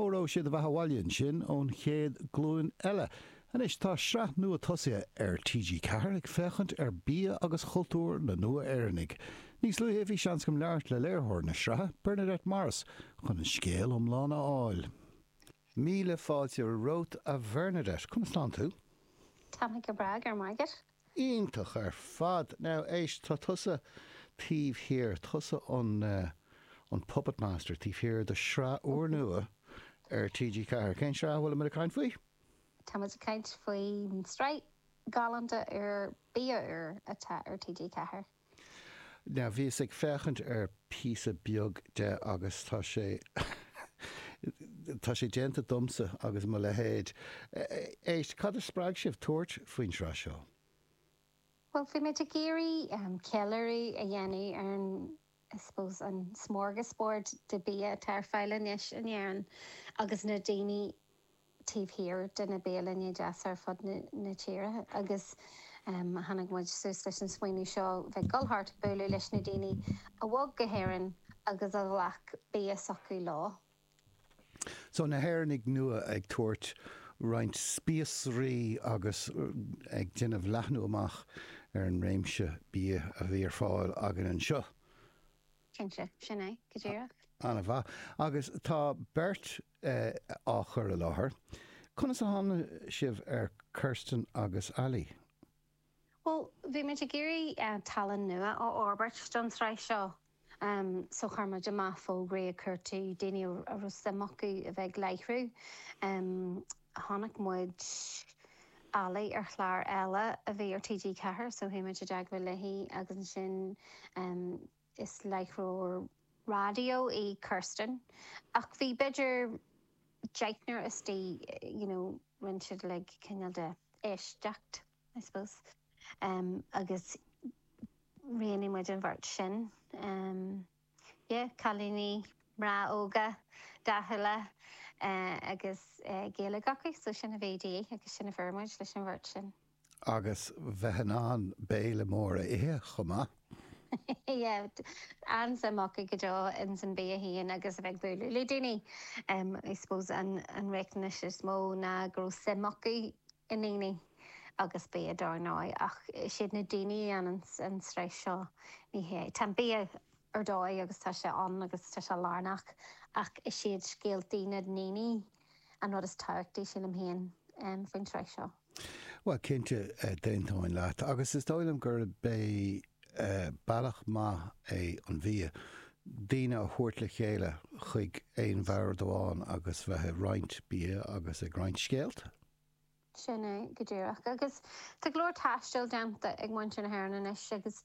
Ólfadh siad a bheatha abhaile ansin ón chéad glúin eile. Anois tá sraith nua tosaithe ar TG Ceathair ag féachaint ar bia agus chultúr na Nua-Éireannaigh. Níos luaithe bhí seans agam labhairt le léiritheoir na sraithe, Bernadette Morris, chun an scéal iomlán a fháil. Míle fáilte romhat a Bhernadette. Conas atá tú? Táim go breá, go raibh maith agat. Iontach ar fad! Now, éist, tá tusa taobh thiar, tusa an, eh, an Puppet Master taobh thiar de shraith úrnua ar TG4. Cén tsraith a bhfuilimid ag caint faoi? Tá muid ag caint faoin tsraith ghalánta úr Bia Úr atá ar TG4. Now bhíos ag féachaint ar píosa beag de agus tá sé tá sé déanta domsa agus mo leithéid. Éist, cad a spreag sibh tabhairt faoin sraith seo? Bhuel, bhí muid ag iarraidh ceiliúradh a dhéanamh ar an, I suppose, an smorgasbord de bia atá ar fáil anois in Éirinn agus na daoine taobh thiar de na bialanna deasa ar fud na tíre agus tháinig muid suas leis an smaoineamh seo, bheith ag dul thart ag bualadh leis na daoine a bhog go hÉirinn agus a ghlac bia s'acu leo. So, na hÉireannaigh nua ag tabhairt roinnt spíosraí agus ag déanamh leathnú amach ar an réimse bia a bhí ar fáil againn anseo. Cinnte, sin é, go díreach. Ana mhaith. Agus tá beirt á chur i láthair. Conas a tháinig sibh ar Kirsten agus Ali? Bhuel, bhí muid ag iarraidh tallann nua a fhorbairt don tsraith seo, so chuir muid amach fógraí ag cuartú daoine a raibh suim acu a bheith ag láithriú. chonaic muid Ali ar chlár eile a bhí ar TG4 so chuaigh muid i dteagmháil léi agus ansin is láithreoir raidió í Kirsten ach bhí b'fhéidir deichniúr istigh you know rinne siad like cineál de éisteacht I suppose agus roghnaigh muid an bheirt sin. Yeah, cailíní, mná óga dathúla agus Gaeilge acu, so sin a bhí de dhíth agus sin a fuair muid leis an bheirt sin. Agus bheith in ann béile mór a ithe chomh maith! Yeah, an-suim acu go deo ins an bia féin agus a bheith ag bualadh le daoine. I suppose an riachtanas is mó ná go raibh suim acu i ndaoine. agus bia dar ndóigh, ach is iad na daoine a dhéanann an tsraith seo, ní hea. Tá an bia ar dóigh agus tá sé ann agus tá sé lárnach, ach is iad scéaltaí na ndaoine an rud is tábhachtaí, sílim féin, faoin tsraith seo. Bhuel, cinnte, d'aontóinn leat, agus is dóigh liom gurb é bealach maith é an bia daoine a thabhairt le chéile chuig aon bhord amháin agus bheith ag roinnt bia agus ag roinnt scéalta. Sin é go díreach. Agus tá go leor taistil déanta ag muintir na hÉireann anois agus